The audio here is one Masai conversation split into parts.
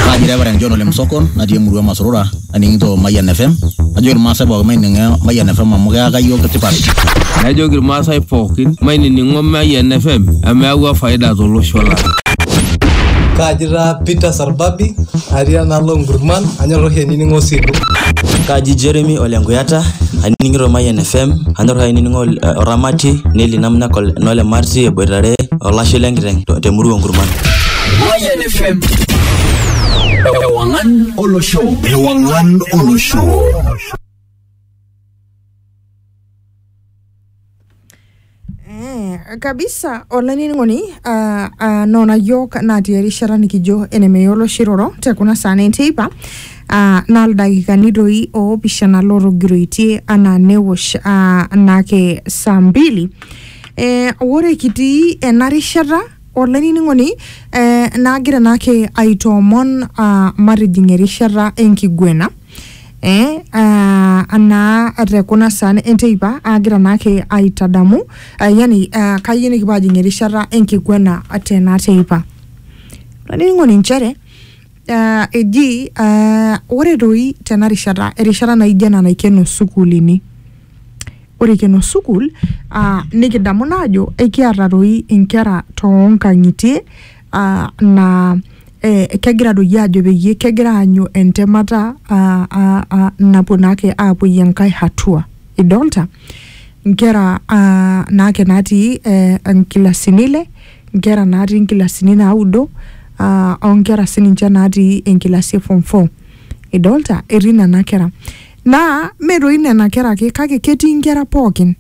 Kaji Reverend John Ole Msokon natii emurua e Masurura aning'ito Mayian FM najoki irmaasai pookin maining'o Mayian FM amu keyaka iyiook tipat. Najoki irmaasai pookin mainining'o Mayian FM amu eyawua faida tolosho lang. Kaaji taa Peter Sarbabi atii enaalo Nkurman anyor oshi ainining'o Silo. Kaaji Jeremy Ole Nkuyata anining'ito Mayian FM anyor ainining'o eh, Oramati Neli Namna Kol- Nole Marti eboitare olashe lenkiteng te murua Nkurman. Mayian FM. Ewangan Olo Show. Ewangan Olo Show. Eh, kabisa olanining'oni uh, uh, nona yiok natii erishata nikijo enemeyiolo shiroro te kuna saa neiteipa uh, naa ildakikani doi oopishana lootogiroitie anaa newosh uh, nake saa mbili eh, ore kitii ena rishata Olainining'oni, eh, naagira naake aitoomon ah, matijing erishata enkiguena eh, ah, anaa te kuna saan enteipa aagira naake aitadamu ah, yani ah, kayieu nikipuo ajing erishata enkiguena tena teipa. Olainining'oni nchere ah, eji ah, ore doi tena rishata, erishata naijo ena naikeno sukuulini, Ore ikeno sukuul uh, nikidamu naa ajo ekiata doi inkera toonkang'itie uh, naa eh, kegira doi ajo peyie kegira aanyu entemata uh, uh, uh, napuo naake aapuoyie enkae hatua idolta inkera uh, naake natii eh, inkilasini ile inkera natii inkilasini naudo uh, onkera sininche natii enkilasi e form four idolta etii nena kera Naa mme doi nena kera ake kake ketii nkera pooki.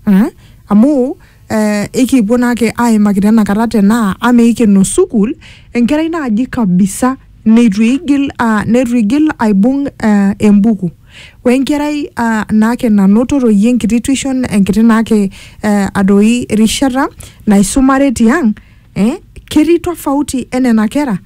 Aa? Amu eh ekipuo naake aimaki tenakata tenaa ama eikeno sukuul enkerai naaji kabisa neitu eigil aa neitu eigil aibung eh embuku. Wenkerai aa naake nanoto doi enkiti tuition enkiti naake eh doi rishata naisumare tiang, eh ketii tofauti enena kera?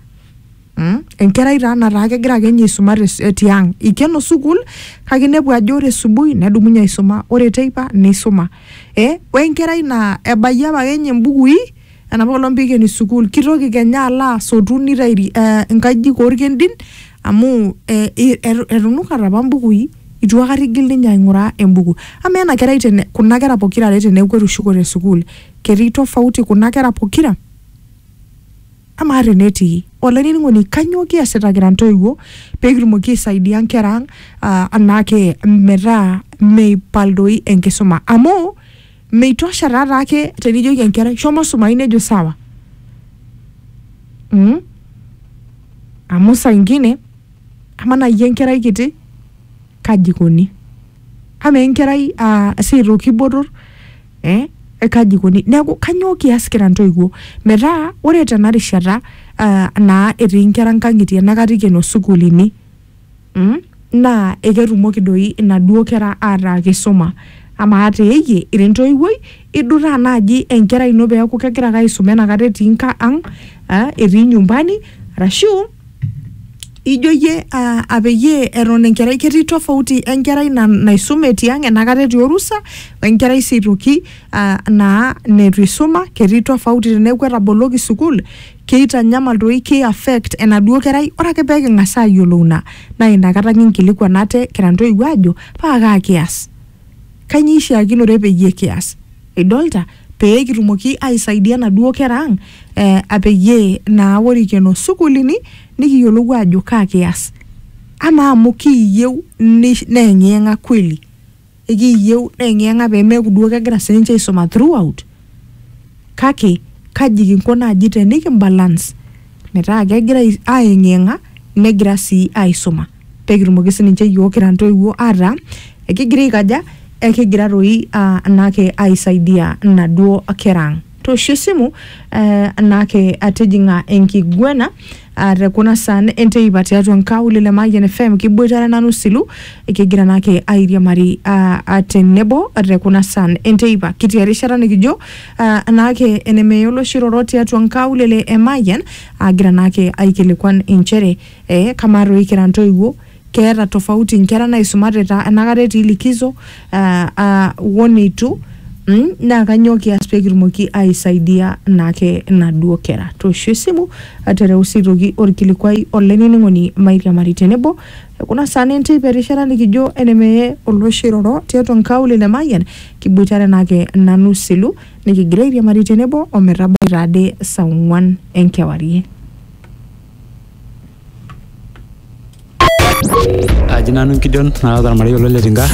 Mm? enkerai taa nataa kegira ake ninye aisuma te s- eh, tiang ikeno sukuul kake inepu ajo ore subui nedumunye aisuma ore teipa neisuma eh? wenkerai naa ebayie apa ake ninye imbukui enapa olong pikeni sukuul kitoki kenya alo asotu nitairi eh, inkajijik orkendin amu eh, i- etu- etunukate apa mbukui itu akata igil ninye aing'uraa embuku amaa ena kerai tene kuna kera pokira are teneeku etushukote sukuul ketii tofauti kuna kera pokira Amaa tenetii? Olainining'oni, kanyoo kiasita kira ntoiwuo pee kitumoki aisaidia nkera ang' ah, anaake metaa meipal doi enkisuma? Amu meitosha taa taake tenijoki enkerai shomo sumayu nejo sawa. Mm? Amu saa ingine amaa naaji enkerai kiti kaji ikoni? Amaa enkerai ah, sii aitoki botor? eh? kaji ikoni neeku kanyoo kias kira ntoiwuo metaa ore tena rishata uh, naa etii nkera nkang'itie enakata ikeno sukuulini mm? naa eketumoki doi inaduo kera ataa kisuma amaa teeyie ira entoiwuoi idutaa naaji enkerai ino peeku kegira ake aisuma enakata etii nka ang uh, etii nyumbani arashu ijo iyie uh, apeyie eton enkerai ketii tofauti enkerai na, naisume tiang enakata etii orusa wenkerai sii aitoki uh, naa neitu isuma ketii tofauti teneeku etaboloki sukuul keitanyamal doi kei affect enaduo kerai ore ake peking'as ayiolou ina naa inakata kinkilikuan ate kira ntoiwuo aajo paa kaa kias Kainyoo eishiakinore peyie kias? Idolta? Pee kitumoki aisaidia naduo kera ang eh, apeyie naa ore ikeno sukuulini nikiyiolou aajo kaa kias. Amaa amu kiiyieu neyeng'iyeng'a kweli? Ekiiyieu neyeng'iyeng'a pee meeku duo kegira sininche aisuma throughout? Kake kaji kinko naaji tenikibalance metaa kegira ayeng'iyeng'a negira sii aisuma? pekitumoki sininche iyiok kira ntoiwuo ataa ekigira aikaja ekigira toi uh, anake aisaidia inaduo kera ang toosho esimu uh, anake atijing'a enkiguena uh, te kuna saan enteipa tiatua nkaulele Mayian FM kiboitare nanu silu kigira nake airiamari uh, tenebo te kuna saan enteipa kitii erishata nikijo uh, anake enemeya oloshiroro tiatua nkaulele e Mayian agira nake aikilikuan inchere Ee, kamaa toi kira ntoiwuo, keeta tofauti nkera naaisumate ta enakata etii likizo aa aa wo neitu mm, naa kanyoo kias pee kitumoki aaisaidia naake naduo kera? Toosho esimu tereu sii aitoki olkilikuai olainining'oni mairiamari tenebo te kuna saa naa enteipa erishata nikijo ene mee olooshi oiroro tiatua nkaulele e Mayian kiboitare naake nanu Selu nikigira airiamari tenebo o metabai taa ade saa ong'wan enkewarie. Aji nanu Gideon naata ormarei olo le Tinga.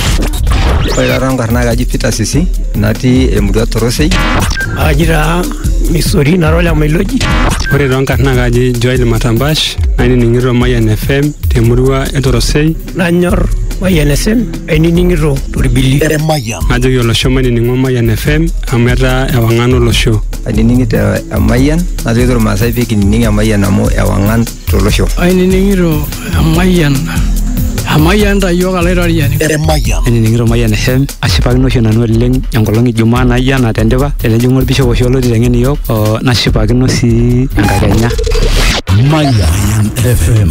Ore taata enkarna kaji Peter Sisi natii emurua Torosei. Aji taa Misori nara ole Mailoji. Ore too nkarna kaji Joel Matambash nainining'ito Mayian FM temurua e Torosei. nanyor Mayian FM ainining'ito torbili Emayian. najoki olosho mainining'o Mayian FM amu etaa ewang'an olosho. ainining'ito emayian najoki irmaasai pee kinining emayian amu ewang'an tolosho ainining'ito emayian emayian tayiok alaitoriani Emayian. ainining'ito Mayian FM ashipakino oshi nanu oleng enkolong ijumaa naijo ena tendipa tenejing'u olbishop oshi olo titeng'en iyiook oo, nashipakino sii enkakenya Mayian FM.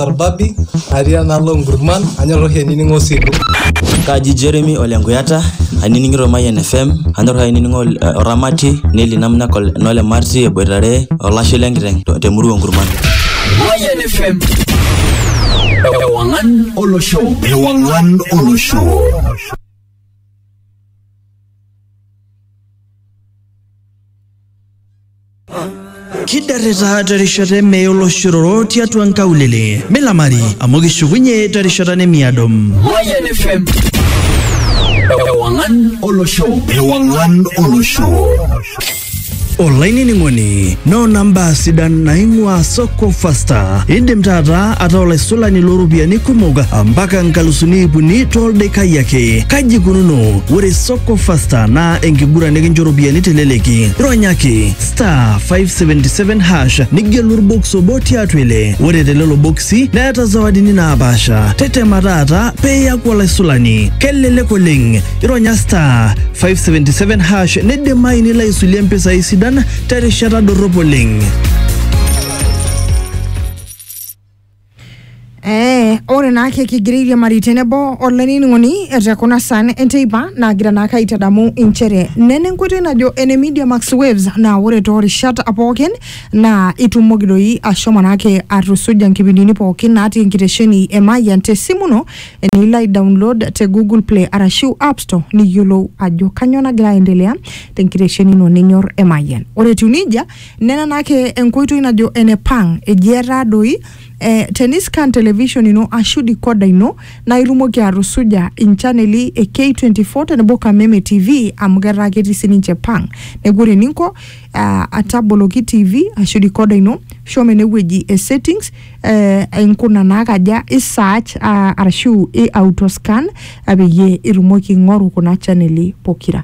orbabi natii enaalo nkurman anyor oshi ainining'o osilu Kaji Jeremy Ole Nkuyata, ainining'ito Mayian FM, anyor oshi ainining'o ol- eh, Oramati, Nelly Namna Kol- Nole Marti eboitare olashe lenkiteng' to- temurua Nkurman. Mayan FM. Ewangan Olosho. Ewangan Olosho. kidarrita terishata emee oloshororo tiatua nkaulele milamari amu kishukunye terishata nemiado Mayan FM. Ewangan Olosho. Ewangan Olosho. olainining'oni noona mbaa sidan naing'ua soko fasta indim taata ataa olaisulani looropiyiani kumok mpaka nkalusuni ipuni toldekai ake kaji kununo ore Soko Fasta naa enkiguran nikincho ropiyiani teleleki. Ronyaki star 577 hash nigelu orbox obo tiatua ile. Ore telelo boksi neeta zawadini naapaasha. Tetema taata pee iaku olaisulani. Kelelek oleng. Ironya star 577 hash neidimayu nilo aisulie mpisai sidan terishata dorrop oleng. Ee, ore naake kigira airiamari tenebo olainining'oni te kuna saan enteipa naagira naake aitadamu inchere nena enkoitoi najo ene Media Max Waves naa ore toorishat pookin naa itumoki doi ashomo naake atusuja nkipindini pookin natii enkitesheni e Mayian te simu ino enilo ai download te Google Play arashu App Store niyiolou ajo kanyoo nagira aendelea te nkitesheni ino ninyor e Mayian. Ore etiu neija Nena naake enkoitoi najo enepang eji etaa doi eh, teniscan television ino ashu dikoda ino naa itumoki atusuja inchaneli e K24 tenebo Kameme TV amu ketaa ketii sininche pang. Neeku ore eninko ah, ataboloki TV ashu dikoda ino shomo enewueji e settings eh, inkuna naakaja i search ah, arashu i autoscan ah, peyie itumoki aing'oru kuna chaneli pokira.